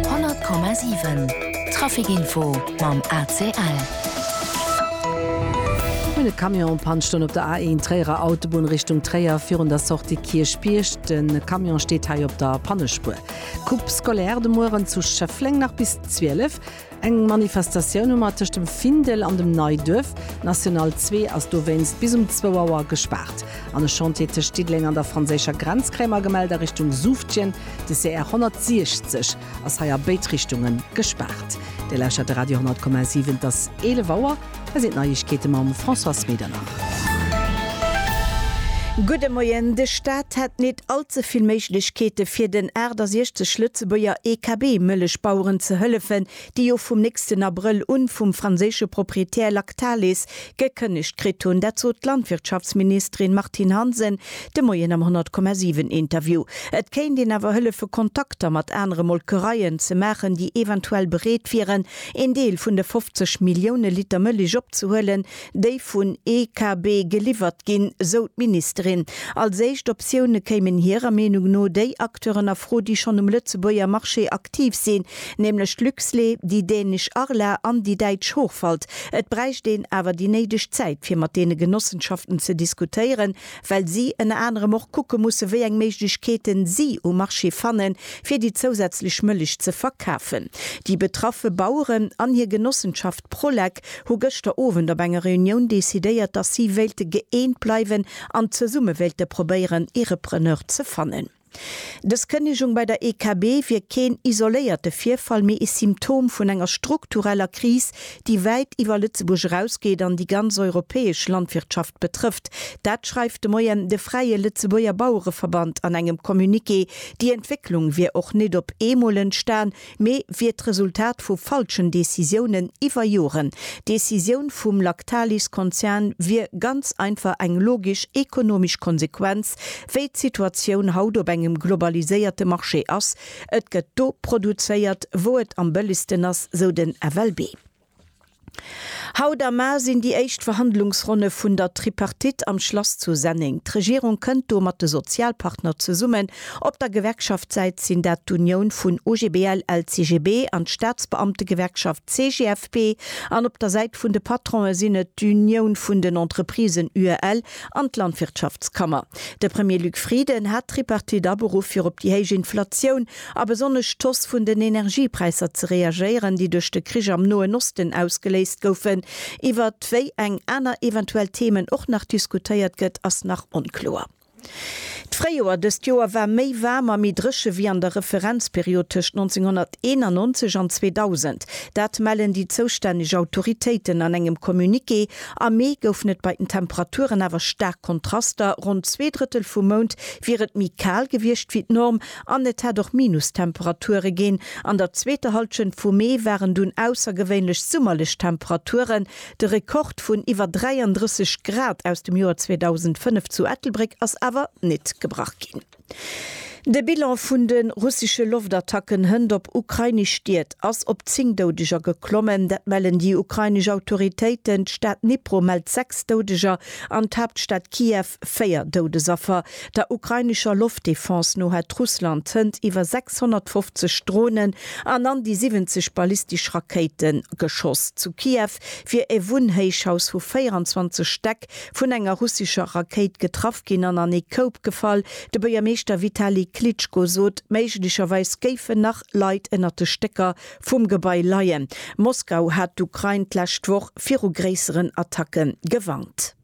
100,7 Trafic Info mam ACL. Hunn e Camion en Panne stoen op der A1 Tréierer Autobunn Richtung Tréier virun der Sortie Kierchbierg. De Camion steet hei op der Pannespuer. Coupe scolaire de mueren zu Schëffleng nach bis 12. Eng Manifestatioun hu mer tëscht dem Findel an dem Neiduerf. D'National 2 ass dowéinst bis um zwou Auer gespaart. An e Chantier tëscht Diddeleng an der franséischer Grenz kréie mer gemellt a Richtung Suftjen. De CR 160 ass hei a béid Richtunge gespaart. Dir lauschtert de Radio 10,7. Et ass 11 Auer. Hei sinn d'Neiegkeete mam Françoise Medernach. Gudde Moien. De Staat hätt nit all ze vill Méiglechkeete fir den 68 Lëtzebuerger EKB-Mëllechbaueren ze hëllefen, déi jo vum nächsten Abrëll un vum franséische Proprietär Lactalis gekënnegt kritt hunn. Dat sot d'Landwirtschaftsministerin Martine Hansen de Moien am 100,7 Interview. Et kéint een awer hëllefe Kontakter mat anere Molkereien ze maachen, déi eventuell bereet wieren Een Deel vun de 50 Millioune Liter Mëllech opzehuelen, déi vun EKB geliwwert ginn, sou d'Ministerin. Als éischt Optioune kéimen hirer Meenung no déi Acteuren a Fro, déi schonn um Lëtzebuerger Marché aktiv sinn, nämlech d'Luxlé, déi dänesch Arla an déi däitsch Hochwald. Et bräicht een awer déi néideg Zäit, fir mat deene Genossenschaften ze diskutéieren, well si ënner anerem och kucke musse wéi eng Méiglechkeeten si um Marché fanne fir déi zousätzlech Mëllech ze verkafen. Déi betraffe Baueren an hir Genossenschaft Prolec hu gëschter Owend op enger Reunioun decidéiert, datt si wéilte gëeent bleiwen an zesumme wéilte probéieren ee Repreneur ze fannen. Dës Kënnegung bei der EKB wier keen isoléierte Virfall, mee ee Symptom vun enger struktureller Kris, déi wäit iwwer Lëtzebuerg erausgeet an déi ganz europäesch Landwirtschaft betrëfft. Dat schreift de Moien de Fräie Lëtzebuerger Bauereverband an engem Communiqué. Déi Entwécklung wier och net op eemol entstan, mee wier d'Resultat vu falschen Decisiounen iwwer Joren. D'Decisioun vum Lactalis-Konzern wier ganz einfach eng logesch ekonomesch Konsequenz, wéi d'Situatioun haut op engem globaliséierte Marché ass. Et gëtt do produzéiert, wou et am bëllegsten ass, sou den FLB. Haut a mar sinn déi éischt Verhandlungsronne vun der Tripartite am Schlass zu Senneng. D'Regierung kënnt do mat de Sozialpartner zesummen. Op der Gewerkschaftssäit sinn dat d'Unioun vun OGBL, LCGB an d'Staatsbeamtegewerkschaft CGFP an op der Säit vun de Patronen sinn et d'Unioun vun den Entreprisen UEL an d'Landwirtschaftskammer. De Premier Luc Frieden hat d'Tripartite aberuff fir op déi héich Inflatioun a besonnesch d'Hausse vun den Energiepräisser ze reagéieren, déi duerch de Krich am Noen Osten ausgeléist goufen. Iwwer wéi eng aner eventuell Themen och nach diskutéiert gëtt, ass nach onkloer. D'Fréijoer dëst Joer war méi waarm a méi dréche wéi an der Referenzperiod tëscht 1991 an 2000. Dat mellen déi zoustänneg Autoritéiten an engem Communiqué. Am Mee goufen et bei den Temperaturen awer staark Kontraster, ronn zwee Drëttel vum Mount wier et méi kal gewiescht wéi d'Norm, An et hätt och Minustemperature ginn. An der zweeter Hallschent vum Mee waren dunn aussergewéinlech summerlech Temperaturen. De Rekord vun iwwer 33 Grad aus dem Joer 2005 zu Ettelbréck ass awer nit gebrach ginn. De Bilan vun de russesche Loftattacken hënt op ukrainesch Stied ass op 10 Doudeger geklommen. Dat mellen déi ukrainesch Autoritéiten. D'Stad Dnipro mellt 6 Doudeger an d'Haaptstad Kiew 4 Doudesaffer. Der ukrainescher Loftdefense no hätt Russland zënter iwwer 650 Dronen an an déi 70 ballistesch Rakéite geschoss. Zu Kiew wier e Wunnhéichhaus vu 24 Stäck vun enger russescher Rakéit getraff ginn an an ee Koup gefall. De Buergermeeschter Vitali Klitschko sot, méiglecherweis géifen nach Leit ënnert de Stécker vum Gebai leien. Moskau hat d'Ukrain d'lescht Woch viru gréisseren Attacke gewarnt.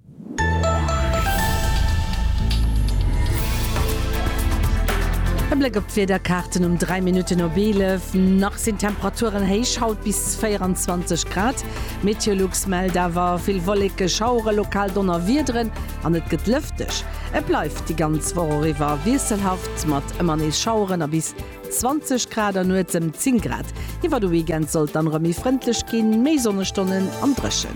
E Bléck op d'Wiederkaarten um 3 Minutten op 11. Nach sinn d'Temperaturen héich, haut bis 24 Grad. Meteolux mellt awer vill Wolleke, Schauere, lokal Donnerwiederen an et gëtt lëfteg. Et bleift déi ganz Woch och iwwer wiesselhaft mat ëmmer nees Schaueren a bis 20 Grad an nuets ëm 10 Grad. Iwwer de Weekend soll et dann erëm méi frëndlech ginn, méi Sonnestonnen an dréchen.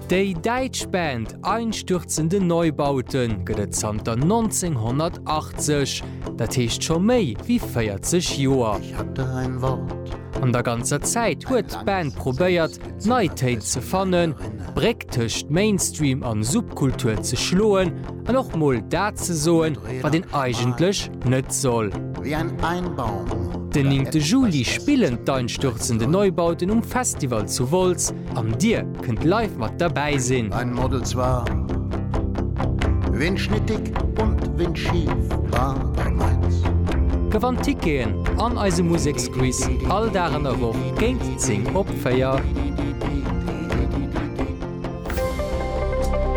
Déi däitsch Band Einstürzende Neubauten gëtt et zanter 1980, dat heescht scho méi wéi 40 Joer. An der ganzer Zäit huet d'Band probéiert, d'Neitéit ze fannen, d'Bréck tëscht Mainstream an Subkultur ze schloen an och mol dat ze soen, wat een eigentlech net soll. Den néngte Juli spillen d'Einstürzende Neubauten um Festival zu Wolz an dir kënnt live mat derbäi sinn. Gewannt Ticketen an eise Museksquiz all Dag an der Woch géint 10 op. 4.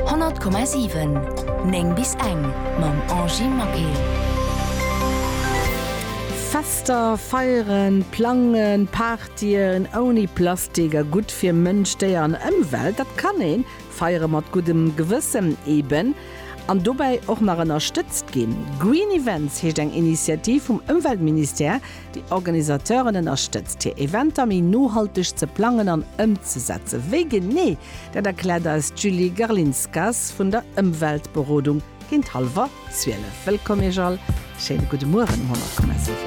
100,7 9 bis eng mam Angy Maquet. Fester, Feieren, Plangen, Partyen ouni Plastik a gutt fir Mënsch, Déier an Ëmwelt, dat kann ee feiere mat guddem Gewëssen eben an dobäi och nach ënnerstëtzt ginn. Green Events heescht eng Initiativ vum Ëmweltministère, Déi Organisateuren ënnerstëtzt, hir Eventer méi nohalteg ze plangen an ëmzesetzen. Wéi genee, dat erkläert eis d'Julie Garlinskas vun der Ëmweltberodung géint hallwer zwielef. Wëllkomm Iech all, schéine gudde Mueren um Honnertkomme.